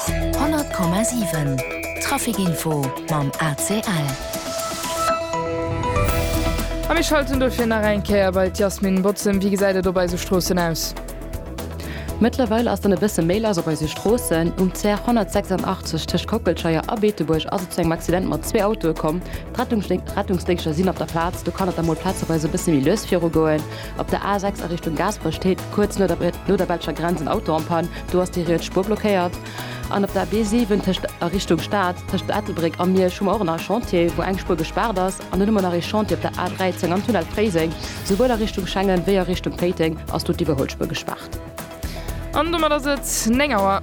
100,7 Trafic info mam ACL. A mir schalten dofir nach eng Kéier bei d'Yasmin Botzen. Wéi gesäit et op eise Stroossen aus? Mëttlerweil ass dann e bësse méi lass op eise Stroossen. Um CR 186 tëscht Kockelscheier a Beetebuerg ass et zu engem Accident mat zwee Autoe komm. D'Rettungsdéngschter sinn op der Plaz. Do kann et da mol plazeweis e bësse méi lues virugoen. Op der A 6 a Richtung Gaasperech steet kuerz no der belscher Grenz en Auto am Pann. do ass déi riets Spuer blockéiert an op der B7 tëscht a Richtung Stad tëscht Ettelbréck a Miersch hu mer och nach e Chantier, wou eng Spuer gespaart ass. An dunn hu mer nach ee Chantier op der A13 am Tunnel Fréiseng, souwuel a Richtung Schengen wéi a Richtung Péiteng ass do d'Iwwerholspur gespaart. An domat ass et 9 Auer.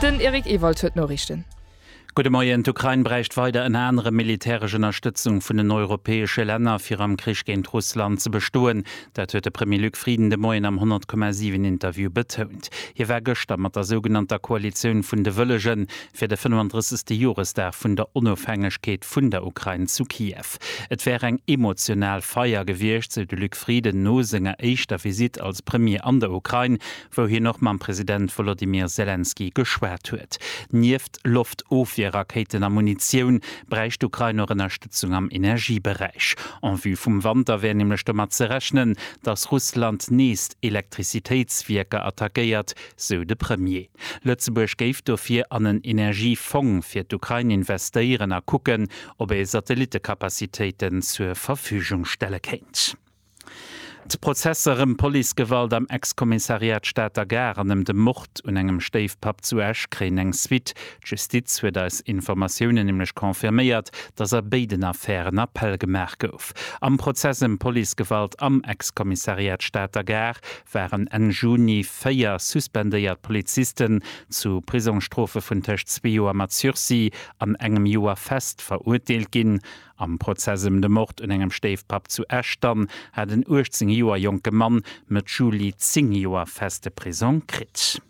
Den Eric Ewald huet d'Noriichten. Gudde Moien, D'Ukrain bräicht weider ënner anerem militäresch Ënnerstëtzung vun den europäesche Länner, fir am Krich géint Russland ze bestoen. Dat huet de Premier Luc Frieden de Moien am 100,7 Interview betount. Hie war gëschter mat der sougenannter Koalitioun vun de Wëllegen fir de 35. Joresdag vun der Onofhängegkeet vun der Ukrain zu Kiew. Et wär eng emotional Feier gewiescht, sou de Luc Frieden no senger éischter Visitt als Premier an der Ukrain, wou hien och mam President Wolodymyr Selenskyj geschwat huet. Nieft Loftofwierrakéiten a Munitioun bräicht d'Ukrain och Ënnerstëtzung am Energieberäich. En vue vum Wanter wär nämlech domat ze rechnen, datt Russland nees d'Elektrizitéitswierker attackéiert, sou de Premier. Lëtzebuerg géif dofir an en Energiefong fir d'Ukrain investéieren a kucken, ob ee Satellitekapazitéiten zur Verfügung stelle kéint. D'Prozesser ëm Policegewalt am Ex-Kommissariat Stater Gare an ëm de Mord un engem Stéifpapp zu Esch kréien eng Suite. D'Justiz huet eis Informatiounen nämlech confirméiert, datt a béiden Affären Appell gemaach gouf. Am Prozess ëm Policegewalt am Ex-Kommissariat Stater Gare waren Enn Juni véier suspendéiert Polizisten zu Prisongsstrofe vun tëscht zwee Joer mat Sursis an engem Joer fest verurteelt ginn. Am Prozess ëm de Mord un engem Stéifpapp zu Esch dann hat en 18 Joer jonke Mann Mëtt Juli 10 Joer feste Prisong kritt.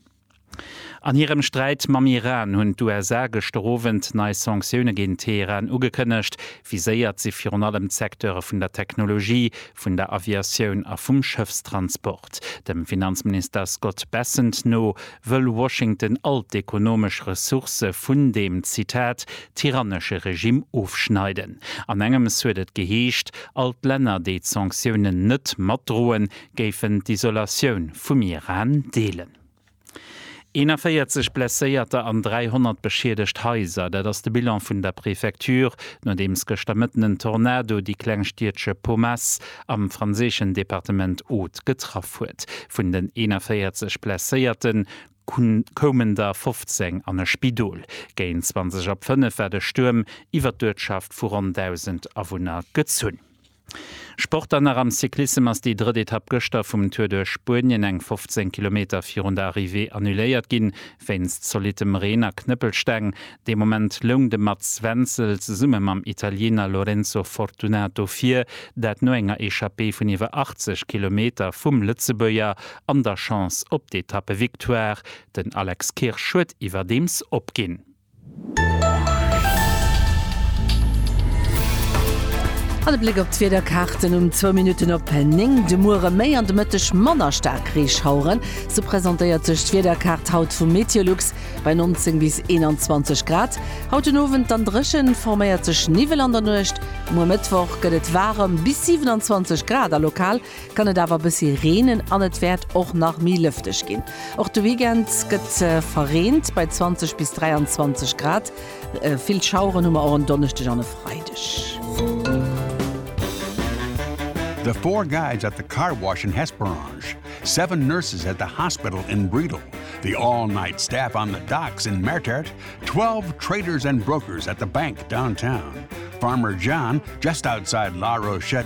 An hirem Sträit mam Iran hunn d'USA gëschter Owend nei Sanktioune géint Teheran ugekënnegt. Viséiert si virun allem d'Secteure vun der Technologie, vun der Aviatioun a vum Schëffstransport. Dem Finanzminister Scott Bessent no wëll Washington all d'ekonomesch Ressourcë vun deem, Zitat, tyrannesche Regimm ofschneiden. An engems huet et geheescht, all d'Länner, déi d'Sanktiounen net matdroen, géifen d'Isolatioun vum Iran deelen. 41 Blesséierter an 300 beschiedegt Haiser, dat ass de Bilan vun der Prefecture, nodeems gëschter Mëtten en Tornado déi kleng Stiedche Pomas, am franséischen Departement Aude getraff huet. Vun den 41 Blesséierte koumen der 15 an e Spidol. Géint 20 op 5 war de Stuerm iwwer d'Uertschaft vu ronn 1.000 Awunner gezunn. Sport dann nach am Cyclissem ass déi drëtt Etapp gëschter vum Tour duerch Spuenien eng 15 Kilometer virun der Arrivée annuléiert ginn, Wéinst zolittem Reen a Knëppelsteng dee Moment loung de Mats Wenzel zesumme mam Italiener Lorenzo Fortunato vir, dat no enger Echappée vun iwwer 80 Kilometer vum Lëtzebuerger an der Chance op d'Etappevictoire. Den Alex Kirsch huet iwwerdeems opginn. An e Bléck op d'Wiederkaarten um zwou Minutten op 9. De Muere méi an de Mëtteg manner staark Reeschaueren, sou presentéiert sech d'Wiederkaart haut vu Meteolux. Bei 19 bis 21 Grad haut den Owend, dann dréchen, forméiert sech Niwwel an der Nuecht. Muer Mëttwoch gëtt et waarem, bis 27 Grad a lokal kann et awer bëssi reenen an et wäert och nach méi lëfteg ginn. Och de Weekend gëtt verreent bei 20 bis 23 Grad. Vill Schaueren hu mer och en Donneschdeg an e Freideg. The four guys at the car wash in Hesperange, seven nurses at the hospital in Bredal, the all-night staff on the docks in Mertert, twelve traders and brokers at the bank downtown, Farmer John just outside La Rochette,